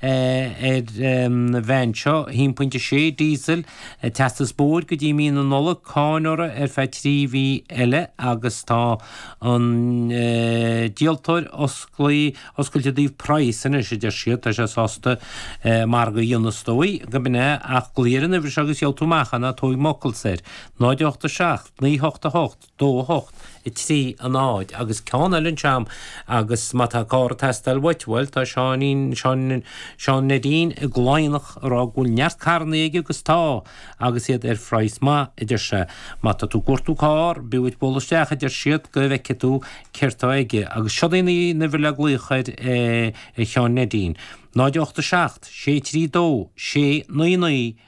ar an veain seo, 1.6, Diesel, teastas bóthair go dtí mí na Nollag, cáin uirthi ar feadh trí mhí eile agus tá an díoltóir osclaí, oscailte i dtaobh praghas anois, a deir siad. Tá sé sásta margadh a dhéanamh, is dóigh, go mb'in é ach glaoigh ar an uimhir seo agus gheobh tú amach ná tóig m'fhocalsa air. 0 8 7 9 8 8 2, 8, 3, 0 agus ceann eile anseo agam agus má tá carr ag teastáil uait, bhuel, tá Seáinín, Seán, Seán Neidín i gCladhnach ag rá go bhfuil neart carrannaí aige agus tá agus iad ar phraghas maith, a deir sé. Má tá tú ag cuartú carr, b'fhiú duit bualadh isteach, a deir siad, go bhfeicfidh tú céard tá aige agus seod í an uimhir le glaoch ar Sheán Neidín, 0, 8, 7, 6, 3, 2, 6, 9, 9,